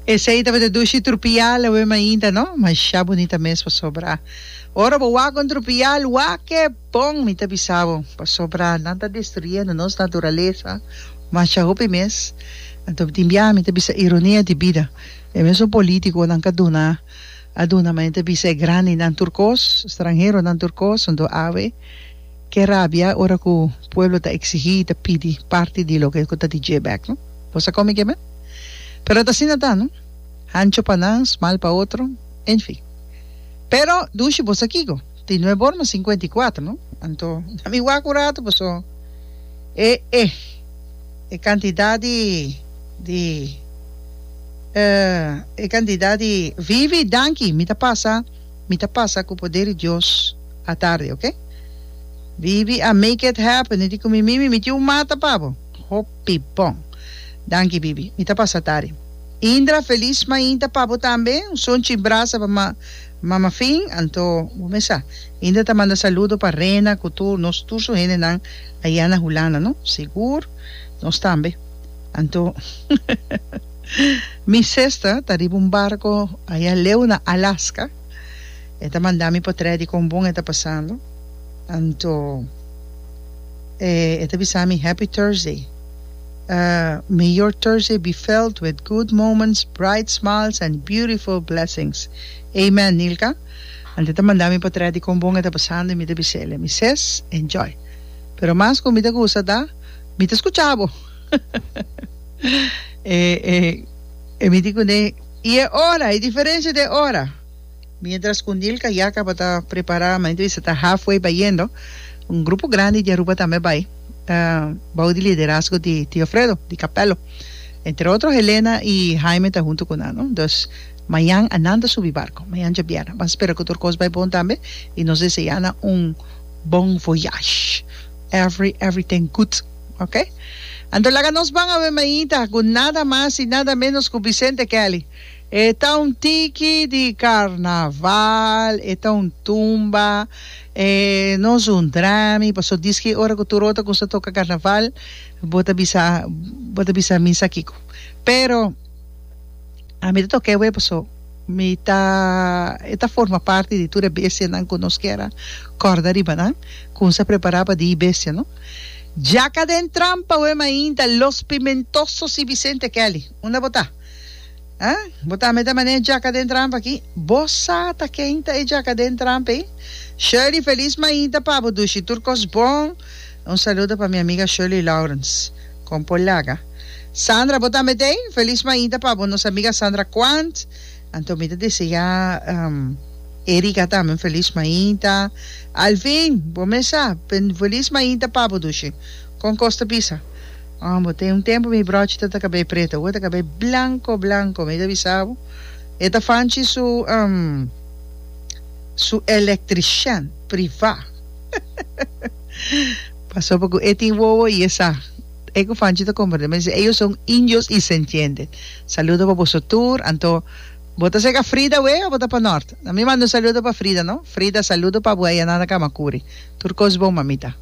Esei tabata dushi trupial awey mainta no masha bunita mes pasobra ora bo wak un trupial wak ke bon mi ta bisa bo pasobra nan ta destruyendo nos naturalesa masha hopi mes anto tin biaha mi ta bisa ironia di bida e mesun politiconan ka duna a duna ma nan ta bisa e grandinan tur kos stranheronan tur kos anto awe. Ke rabia ora ku pueblo ta eksigí i ta pidi parti di loke ku ta di dje bèk, no? Bosa komi ke mei? Pero ata asina ta, no? Hancho pa nan, smal pa otro, en fin. Pero, dushi bo sa kiko? Tin nuebe ora mas sinkuenta i kuater, no? Anto, na mi wak un ratu paso e e e kantidat di di e kantidat di vivi danki mi ta pasa. mi ta pasa cu poder di Dios atardi ok. Bibi a make it happen no tin cu mi mimi mi tin un mata pa bo. Hopi bon. Danki Bibi. Mi ta pasa atari. Indra feliz mainta pa bo tambe. Un son chin brasa pa ma mama fin anto bo mes sa. Indra ta manda saludo pa Rena cu tur nos tur su hendenan ayana Hulanda no. Sigur nos tambe anto. Mi sester ta riba un barco aya leu na Alaska e ta manda mi pa trae di con bon e ta pasando anto e e ta bisa mi happy Thursday ah may your Thursday be filled with good moments bright smiles and beautiful blessings amen Nilka anto e ta manda mi pa trae di con bon e ta pasando y mi ta bisele mi ses enjoy pero mas cu mi ta gusta ta mi ta scucha bo. e, e, e mi di kuné, i e ora, e diferensia di e ora. Mientras ku Nilka ya tabata prepará, mi entrevista ta halfway bayendo, un grupo grandi di Aruba tambe bai, ah, bou di liderazgo di Tio Fredo, di Capello. Entre otro Helena i Haime ta huntu ku nan, no. Dus, mañan a nan ta subi barko, mañan dje bièrnè. Ban spera ku tur kos bai bon tambe, i nos deseá nan un bon voyage. Every, everything good. Ok. Anto laga nos ban awe mainta cu nada mas y nada menos cu Vicente Kelly. E ta un tiki di carnaval, e ta un tumba, e nos un drami, paso diski ora cu Turota cu sa toca carnaval, bo ta bisa, bo ta bisa mi sa kico. Pero. a mi ta toka e web so mi ta e ta forma parti di tur e bestianan ku nos kier a kòrda riba nan ku nos a prepará pa di bestia no Djaka den trampa wei mainta Los Pimentosos i Vicente Kelly unda bo ta a bo ta mete manera djaka den trampa aki bo sa ta ken ta e djaka den trampa ei Shirley Feliz Mainta pa bo dushi tur kos bon un saludo pa mi amiga Shirley Laurens. Con por laga. Sandra bo tambe den? Feliz mainta pa bo nos amiga Sandra Quant. Anto mi ta desea Erica tambe un feliz mainta. Alvin bo mesa un feliz mainta pa bo dushi. Con cos ta bisa? Oh bo tin un tempo mi brochi ta ta cabei preto awo ta cabei blanco blanco mi ta bisa bo e ta fanchi su su electrician priva. Pasobra cu e tin wowo y e sa. E cu Fanchi ta comprende mester dice, Ellos son indios y se entiende. Saludo pa boso tur. Anto, bo ta cerca Frida wee o bo ta pa Nort? Na mi manda un saludo pa Frida, no? Frida, saludo pa bo aya nan na Camacuri. Tur cos bon, mamita.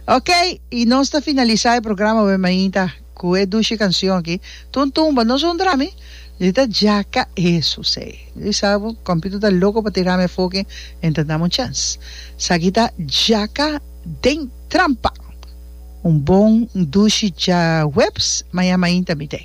Ok, y nos ta finalisa e programa wee, mamita. Cu e dushi cancion aki, Tun tumba no sun drami, di ta djaca eso sei. Di sa bo, Computer ta loco pa tira me foki en ta dam un chance. Saki ta djaca den trampa. Un bon dushi dja huebs, maña mainta mi te.